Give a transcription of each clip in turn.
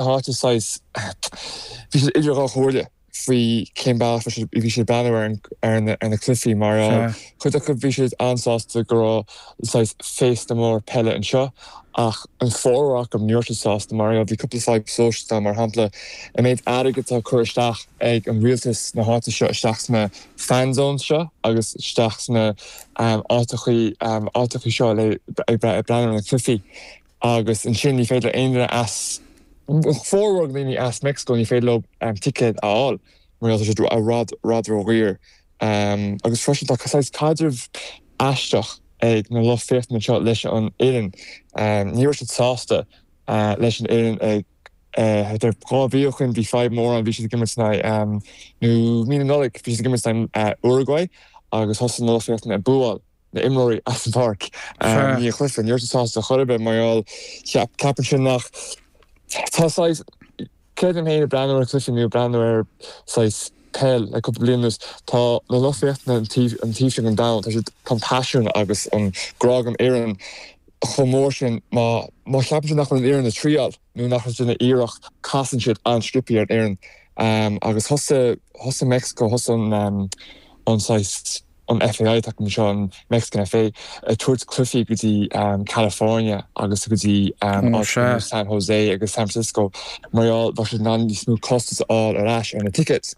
Tá siad saghas, bhí siad idir dhá chomhairle faoi cén bealach a bhí siad ag breathnú ar na cluichí mar chuid acu bhí siad an-sásta go raibh saghas féasta mór peile anseo ach an formhór acu ní raibh siad sásta mar bhí cúpla fadhb sóisialta mar shampla an méid airgid atá ag cur isteach ag an rialtas na háite anseo isteach sna fan zones seo agus isteach sna áiteachaí seo le breathnú ar na cluichí. Agus ansin, ní féidir le aon duine as, formhór na ndaoine as Meicsiceo, ní féidir leo ticéad a fháil mar gheall tá siad i bhfad ródhaor. Agus freisin, tá saghas caidreamh aisteach ag na lucht féachana seo leis an bhfoireann. Ní raibh siad sásta leis an bhfoireann ag, thar dhá mhí ó shoin, bhí fadhb mór ann, bhí siad ag imirt in aghaidh, nó mí na Nollaig, bhí siad ag imirt in aghaidh Uruguay agus thosaigh na lucht féachana ag búáil. na imreoirí as an pháirc. i ndiaidh an chluife. Ní raibh siad sásta ar chor ar bith mar gheall. Cheap ceapaimse nach tá saghas creidim féin ag breathnú ar chluife nó breathnú ar saghas peil le cúpla bliain anuas. Tá na lucht féachana an taobh an taobh sin an domhan. Tá siad tá an paisean agus an grá don fhoireann chomh mór sin má má cheapann siad nach bhfuil an fhoireann ag triáil. Nó nach ndéanann siad iarracht, casann siad an-sciopthaí ar an bhfoireann agus thosaigh Meicsiceo, thosaigh an FAI, atá acu anseo, an Mexican FA, ag tabhairt cluichí go dtí California agus go dtí áiteanna mar San José agus San Francisco mar gheall go raibh siad in ann níos mó costas a fháil ar ais ar na tickets.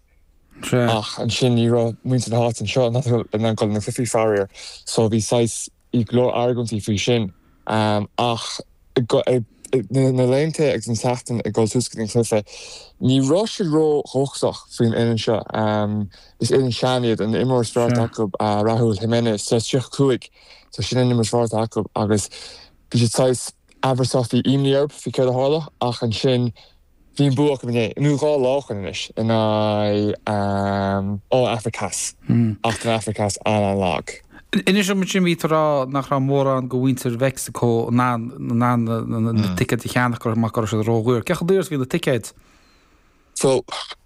Ach ansin ní raibh muintir na háite anseo in ann dul ag na cluichí faraor so bhí saghas Bhí go leor argóintí faoi sin, ach na laethanta agus na seachtainí ag dul suas go dtí an cluiche, ní raibh siad ró dhóchasach faoin fhoireann seo. Is foireann sean iad, an imreoir is fearr acu, Raúl Jiménez, tá sé 35, so sin an imreoir is fearr acu agus bhí siad saghas amhrasach, bhí imní orthu faoi céard a tharlódh ach ansin, Bhí an bua acu inné, nó dhá lá ó shin anois, in aghaidh an Afraic Theas, ach tá an Afraic Theas an-an-lag. Inis dom ansin, bhí tú ag rá nach raibh mórán de mhuintir Mheicsiceo in ann na ticéid a cheannach, go raibh siad ródhaor. Cé chomh daor is a bhí na ticéid?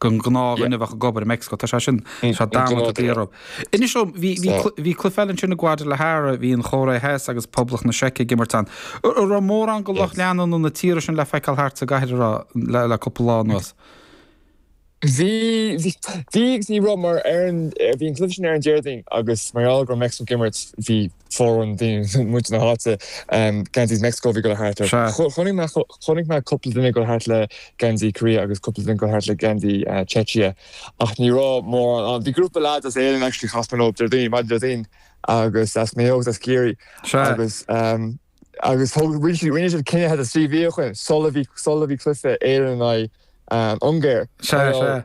do ghnáthdhuine a bheadh ag obair i Meicsiceo. Tá sé sin, tá sé damanta daor. Inis dom, bhí, bhí, bhí cluiche eile ansin i Guadalajara, bhí an Chóiré Theas agus Poblacht na Seice ag imirt ann. Ra, raibh mórán de lucht leanúna na dtíortha sin le feiceáil thart sa gcathair an raibh, le, le cúpla lá anuas? Bhí, bhí, bhí agus bhí, ra, mar ar an, bhí an cluiche sin ar an Déardaoin agus mar gheall go raibh Meicsiceo ag imirt, bhí, foreign theme muid na háite geansaí Mexico bhí dul thart orthu Sea. chonaic mé chonaic mé cúpla duine ag dul thart le geansaí Korea agus cúpla duine ag dul thart le geansaí Czechia ach ní raibh mórán ann bhí grúpa leaids as Éirinn actually chas mé nóieb Déardaoin maidir le daoine agus as Maigh Eo agus as Ciarraí Sea. agus agus thug rinne siad rinne siad cinneadh had a trí bhia chugainn sula bhí sula bhí cluiche Éireann in aghaidh Ungáir Sea Sea.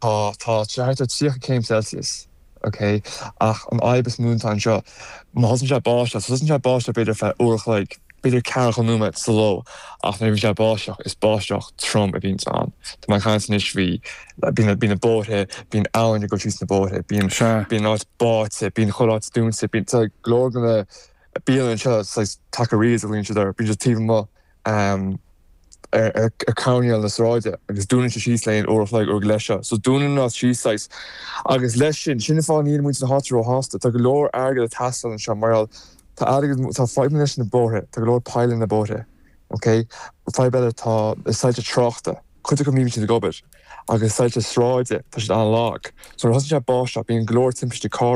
Tá sé thart ar 30 céim Celsius, ok? Ach an fhadhb is mó atá anseo, má thosaíonn sé ag báisteach, tosaíonn sé ag báisteach b'fhéidir ar feadh uair a chloig, b'fhéidir ceathracha nóiméad sa ló, ach nuair a bhíonn sé ag báisteach, is báisteach trom a bhíonns ann. Tá mé ag caint anois faoi, bíonn, bíonn na bóithre, bíonn abhainn ag dul tríd na bóithre, bíonn, bíonn an áit báite, bíonn chuile áit dúnta, bíonn, tá go leor de na bialanna anseo, saghas taquerías a ghlaonn siad orthu, bíonn siad taobh amuigh. ar choirnéal na sráide agus dúnann sé síos le haghaidh uair a chloig uair go leith seo so dúnann an áit síos saghas agus leis sin sin an fáth níl muintir na háite róshásta tá go leor airgead ag teastáil anseo mar gheall tá airgead tá fadhbanna leis na bóithre tá go leor poill sna bóithre ok fadhb eile tá na soilse tráchta cuid acu níl siad ag obair agus soilse sráide tá siad an-lag so nuair a thosaíonn sé ag báisteach bíonn go leor timpistí carr